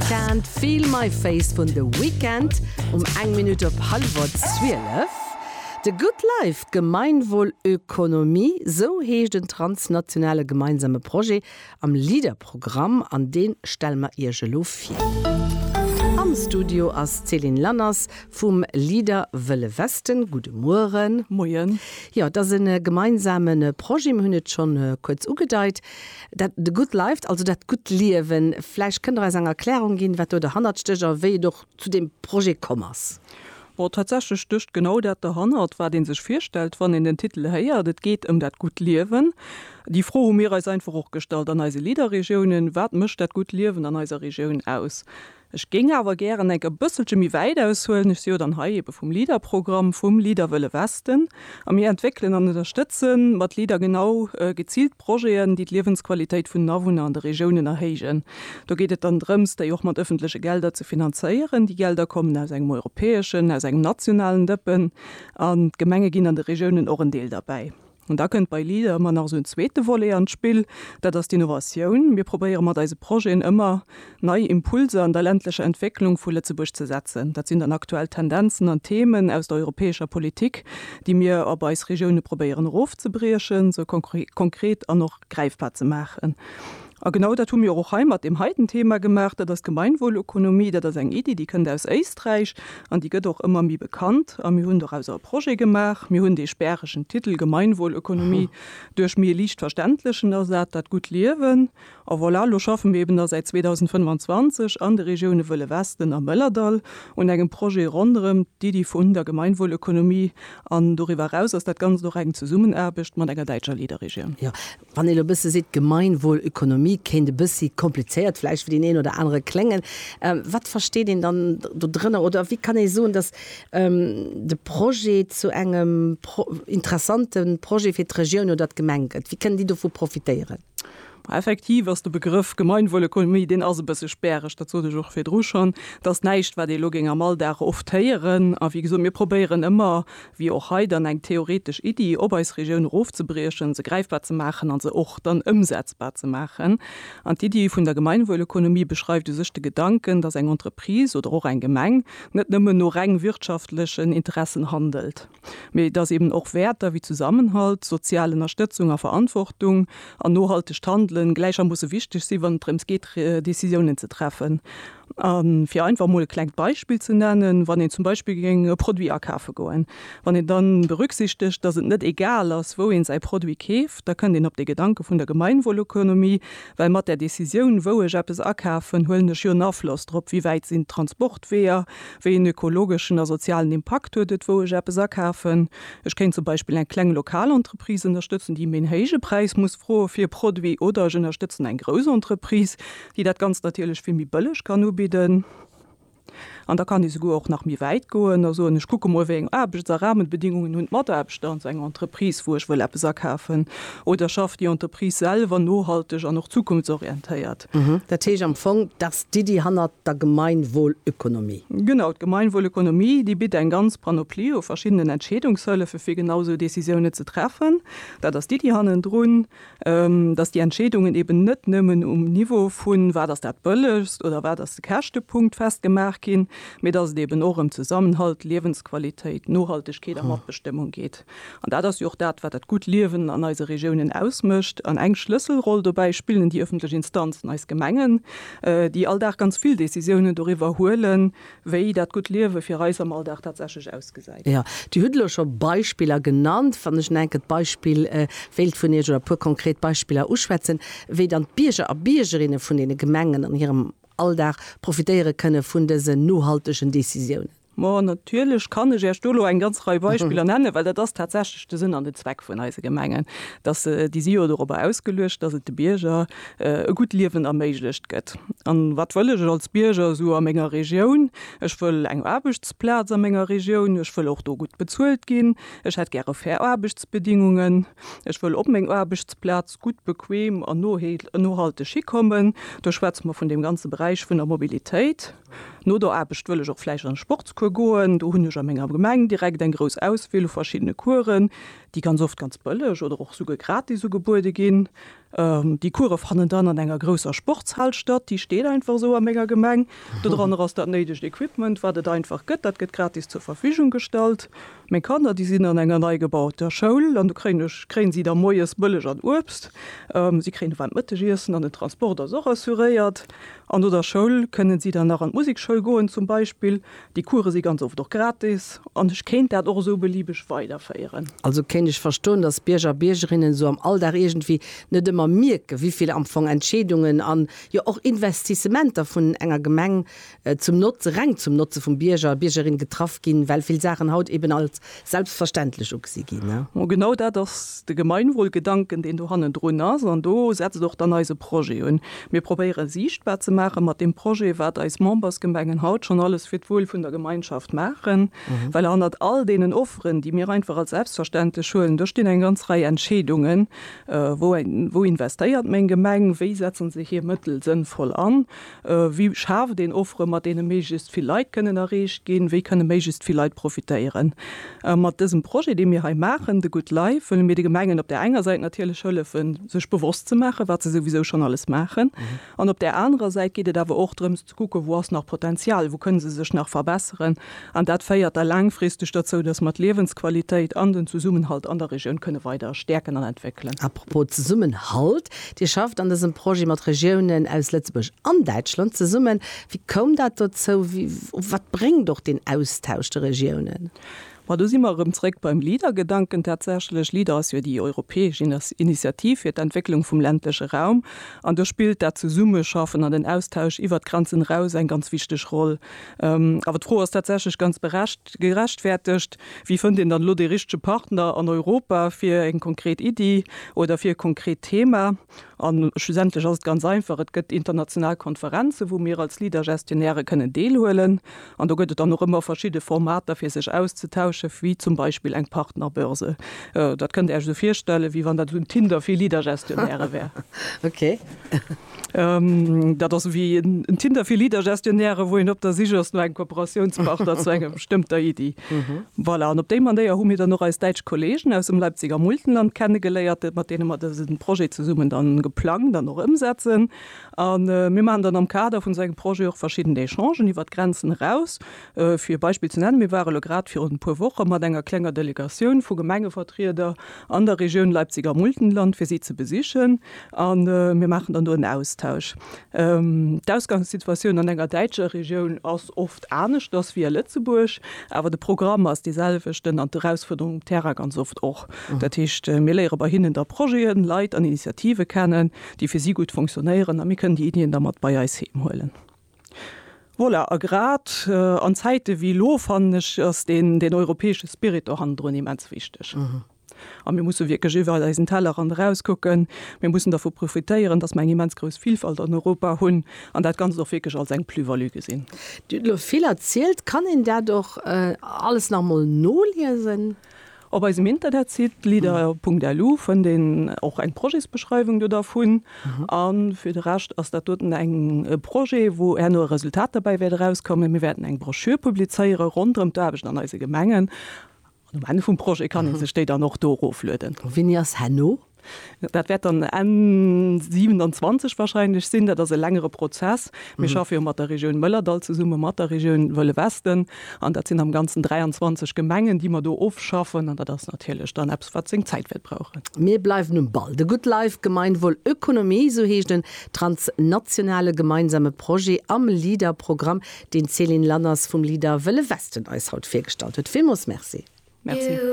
Can't feel my face vun The Weeknd um eng Minutt op hallwer 12. The Good Life, Gemeinwohlökonomie, sou heescht en transnationale gemeinsame Projet am LEADER-Programm an deen stelle mer iech elo vir. Am Studio ass d'Céline Lanners vum LEADER Wëlle Westen. Gudde Mueren. Moien. Jo, et ass e gemeinsame Projet, mir hunn et schonn kuerz ugedeit. Dat The Good Life, also dat gutt Liewen. Vläicht kënnt Der eis eng Erklärung ginn, wat do derhannert stécht a wéi et och zu deem Projet komm ass? Bon, tatsächlech stécht genau dat derhannert, wat ee sech virstellt, wann een den Titel héiert. Et geet ëm dat gutt Liewen. Déi Fro hu mir eis einfach och gestallt an eise Leader-Regiounen, Wat mécht dat gutt Liewen an eiser Regioun aus? Ech géing awer gären enk e bësselche méi wäit aushuelen. Ech si jo dann hei ebe vum LEADER-Programm, vum LEADER Wëlle Westen, a mir entwéckelen an ënnerstëtze mat LEADER genau geziilt Projeten, déi d'Liewensqualitéit vun den Awunner an de Regiounen erhéijen. Do geet et dann drëms, déi och mat ëffentleche Gelder ze finanzéieren. Déi Gelder kommen aus engem europäeschen, aus engem nationalen Dëppen an d'Gemenge ginn an de Regiounen och en Deel derbäi. An da kënnt bei LEADER ëmmer nach esou en zweete Volet an d'Spill, dat ass d'Innovatioun. Mir probéiere mat eise Projeten ëmmer nei Impulser an der ländlecher Entwécklung vu Lëtzebuerg ze setzen. Dat sinn dann aktuell Tendenzen an Themen aus der europäescher Politik, déi mir op eis Regioune probéieren erofzebriechen, se konkret an och gräifbar ze maachen. A genau dat hu mir och hei mat deem heiten Thema gemaach. Dat ass d'Gemeinwohlökonomie. Dat ass eng Iddi, déi kënnt aus Éisträich an déi gëtt och ëmmer méi bekannt. A mir hunn dorausser e Projet gemaach. Mir hunn dee späregen Titel Gemeinwohlökonomie duerch méi e liicht verständlechen ersat, Dat gutt Liewen. A voilà, elo schaffe mir eben da säit 2025 an de Regioune Wëlle Westen a Mëllerdall un engem Projet ronderëm d'Iddi vun der Gemeinwohlökonomie. An doriwwer eraus ass dat Ganzt och eng Zesummenaarbecht mat enger däitscher Leaderregioun. Jo, Wann een elo e bësse seet, d'Gemeinwohlökonomie kéint e bëssi komplizéiert vläicht fir deen een oder anere kléngen, wat versteet een dann do drënner? Oder wéi kann ee soen, datt de Projet zu engem interessante Projet fir d'Regioun oder d'Gemeng gëtt? Wéi kënnen déi dovu profitéieren? Effektiv ass de Begrëff Gemeinwohlökonomie, deen ass e bësse späreg, dat sot ech och virdru schonn. Et ass näischt, wat ee elo géing am Alldag oft héieren. A wéi gesot, mir probéieren ëmmer, Wier och hei dann eng theoretesch Iddi, op eis Regioun erofzebriechen, se gräifbar ze maachen a se och dann ëmsetzbar ze maachen. An d'Iddi vun der Gemeinwohlökonomie beschreift u sech de Gedanken, dass eng Entreprise oder och eng Gemeng net nëmmen no reng wirtschaftlechen Interessen handelt, mee dass eben och Wäerter wéi Zusammenhalt, sozial Ënnerstëtzung a Verantwortung an nohaltegt Handelen gläichermoosse wichteg si wann et drëms geet Decisiounen ze treffen. A fir einfach emol e klengt Beispill ze nennen, Wann een zum Beispill géing e Produit akafe goen, wann een dann berücksichtegt, dass et net egal ass, wou een säi Produit keeft, da kënnt een op dee Gedanke vun der Gemeinwohlökonomie, well mat där Décisioun, wou ech eppes akafen, huelen ech jo en Afloss drop, wéi wäit sinn d'Transportweeër, wéi een ökologeschen a sozialen Impakt huet et, wou ech eppes akafen. Ech kéint zum Beispill eng kleng lokal Entreprise ënnerstëtzen, déi mir een héije Präis muss froe fir e Produit, oder ech ënnerstëtzen eng grouss Entreprise, déi dat Ganzt natierlech vill méi bëlleg kann ubidden, an da kann ee souguer och nach méi wäit goen a soen, ech kucke mol, wéi eng Aarbechts a Rahmenbedingungen hunn d'Mataarbechter an esou enger Entreprise, wou ech wëll eppes akafen, oder schafft déi Entreprise selwer nohalteg an och zukunftsorientéiert. Dat heescht am Fong, dass d'Iddi hannert der Gemeinwohlökonomie. Genau, d'Gemeinwohlökonomie, déi bitt eng ganz Panoplie u verschiddenen Entscheedungshëllefe fir genau esou Décisiounen ze treffen. Dat ass d'Iddi hannendrun. dass déi Entscheedungen eben net nëmmen um Niveau vu wat ass dat Bëllegst oder wat ass de Käschtepunkt festgemaach ginn, mee dass et eben och ëm Zesammenhalt, Liewensqualitéit, Nohaltegkeet a Matbestëmmung geet. An dat ass jo och dat, wat dat gutt Liewen an eise Regiounen ausmécht. An eng Schlësselroll dobäi spillen déi ëffentlech Instanzen, eis Gemengen, déi all Dag ganz vill Decisiounen doriwwer huelen, Wéi dat gutt Liewe fir eis am Alldag tatsächlech ausgesäit. Jo, Dir hutt elo scho Beispiller genannt. Wann ech en enkelt Beispill wéilt vun Iech oder e puer konkret Beispiller uschwätzen, wéi dann d'Bierger a Biergerinne vun deene Gemengen an hirem Alldag profitéiere kënne vun dësen nohaltegen Decisiounen. Ma natierlech kann ech Iech do elo eng ganz Rei Beispiller nennen, well dat ass tatsächlech de Sënn an de Zweck vun eise Gemengen, dass se, déi si jo dorobber ausgeluecht, dass et de Bierger e gutt Liewen erméiglecht gëtt. A wat wëll ech als Bierger esou a menger Regioun? Ech wëll eng Aarbechtsplaz a menger Regioun, ech wëll och do gutt bezuelt ginn, ech hätt gäre fair Aarbechtsbedingungen, ech wëll op meng Aarbechtsplaz gutt, bequem an nohalteg hikommen. Do schwätze mer vun deem ganze Beräich vun der Mobilitéit. No der Aarbecht wëll ech och vläicht an e Sportscours goen. Do hunn ech a menger Gemeng direkt eng grouss Auswiel u verschiddene Coursen, déi ganz oft ganz bëlleg oder och esouguer gratis ugebuede ginn. Déi Course fannen dann an enger grousser Sportshal statt, déi steet einfach esou a menger Gemeng. Dodranner ass dat néidegt Equipment, wat et einfach gëtt, dat gëtt gratis zur Verfügung gestallt. Meng Kanner, déi sinn an enger neigebauter Schoul an do kréien ech, kréien si da moies Bëlleg an Uebst, si kréien e waarmt Mëttegiessen an den Transport ass och assuréiert. An no der Schoul kënnen si dann nach an d'Musikschoul goen zum Beispill, Déi Course si ganz oft och gratis an ech kéint dat och esou beliebeg weiderféieren. Also kéint ech verstoen, dass d'Bierger a Biergerinnen esou am Alldag iergendwéi net ëmmer mierken, wivill am Fong Entscheedungen an jo och Investissementer vun enger Gemeng zum Notze, reng zum Notze vum Bierger, Biergerin getraff ginn, well vill Saachen haut eben als selbstverständlech ugesi ginn. Mo genau dat ass de Gemeinwohlgedanken, deen do hannendrun ass, an do setzt och dann eise Projet un. Mir probéiere siichtbar ze maache mat deem Projet, wat eis Membersgemengen haut schonn alles fir d'Wuel vun der Gemeinschaft maachen, well hannert all deenen Offeren, déi mir einfach als selbstverständlech huelen, do stinn eng ganz Rei Entscheedungen, Wou investéiert meng Gemeng? Wéi setzen se hir Mëttel sënnvoll an? Wéi schaaft een Offere mat deene méiglechst vill Leit kënnen erreecht ginn? Wéi kënne méiglechst vill Leit profitéieren? Mat dësem Projet, dee mir hei maachen, The Good Life, wëlle mir de Gemengen op där enger Säit natierlech hëllefen, sech bewosst ze maachen, wat se souwisou schonn alles maachen. An op där anerer Säit geet et awer och drëms ze kucken, Wou ass nach Potenzial? Wou kënne se sech nach verbesseren? An dat féiert da laangfristeg derzou, dass mer d'Liewensqualitéit an den Zesummenhalt an der Regioun kënne weider stäerken an entwéckelen. A propos Zesummenhalt, Dir schafft an dësem Projet mat Regiounen aus Lëtzebuerg an Däitschland zesummen. Wéi koum dat dozou? Wat bréngt och deen Austausch de Regiounen? Ma do si mer erëm zréck beim Leader-Gedanken. Tatsächlech, Leader ass jo déi europäesch Initiativ fir d'Entwécklung vum ländleche Raum. An do spillt dat Zesummeschaffen an den Austausch iwwert d'Grenzen eraus eng ganz wichteg Roll. Awer d'Fro ass tatsächlech ganz gerechtfertegt, Wéi fënnt een dann elo dee richtege Partner an Europa fir eng konkret Iddi oder fir e konkret Thema? A schlussendlech ass et ganz einfach, Et gëtt international Konferenzen, wou mir als Leader-Gestionnairë kënnen deelhuelen. An do gëtt et dann och ëmmer verschidde Formater, fir sech auszetauschen, wéi zum Beispill eng Partnerbörse. Dat kënnt Dir Iech esou virstellen, wéi wann dat esou en Tinder fir Leader-Gestionnairë wär. Ok. Dat ass ewéi en Tinder fir Leader-Gestionnairë, wou een op der Sich ass no engem Kooperatiounspartner zu enger bestëmmter Iddi. Voilà, an op déi Manéier hu mir dann och eis däitsch Kolleegen aus dem Leipziger Multenland kennegeléiert, mat deene mer dësen Projet zesummen dann geplangt an och ëmsetzen. A mir maachen dann am Kader vun esou engem Projet och verschidden Echangen iwwert d'Grenzen eraus, Fir e Beispill ze nennen, Mir ware lo grad virun e puer Woche mat enger klenger Delegatioun vu Gemengevertrieder an der Regioun Leipziger Muldenland, fir si ze besichen. A mir maachen dann do en Austausch. D'Ausgangssituatioun an enger däitscher Regioun ass oft aneschters wéi a Lëtzebuerg, awer de Programm ass dee selwechten an d'Erausfuerderung um Terrain ganz oft och. Dat heescht, mir léiere bei hinnen da Projeten, Leit an Initiative kennen, déi fir si gutt funktionéieren a mir kënnen déi Iddien da mat bei eis heem huelen. Voilà, a grad an Zäite wéi elo, fannen ech, ass deen, deen europäesche Spirit do hannendrun immens wichteg. A mir musse wierklech iwwert eisen Tellerrand eraus kucken. Mir mussen dervu profitéieren, dass mer eng immens grouss Vielfalt an Europa hunn an dat Ganzt och wierklech als eng Plus-value gesinn. Dir hutt elo vill erzielt. Kann een dat och alles nach emol noliesen? Op eisem Internetsite leader.lu fënnt een och eng Projetsbeschreiwung do dervun. An fir de Rescht ass dat doten eng e Projet, wou herno e Resultat derbäi wäert erauskommen. Mir wäerten eng Broschür publizéiere ronderëm d'Aarbecht an eise Gemengen. An um Enn vum Projet kann ee sech déi dann och do eroflueden. Wéini ass herno Dat wäert dann Enn 27 wahrscheinlech sinn. Dat ass e längere Prozess. Mir schaffe jo mat der Regioun Mëllerdall zesumme mat der Regioun Wëlle Westen. An dat sinn am Ganzen 23 Gemengen, déi mer do ofschaffen. An dat ass natierlech dann eppes, wat seng Zäit wäert brauchen. Mir bleiwen um Ball. De Good Life Gemeinwohlökonomie, esou heescht en transnationale gemeinsame Projet am LEADER-Programm, deen d'Céline Lanners vum LEADER Wëlle Westen eis haut virgestallt huet. Villmools Merci. Merci.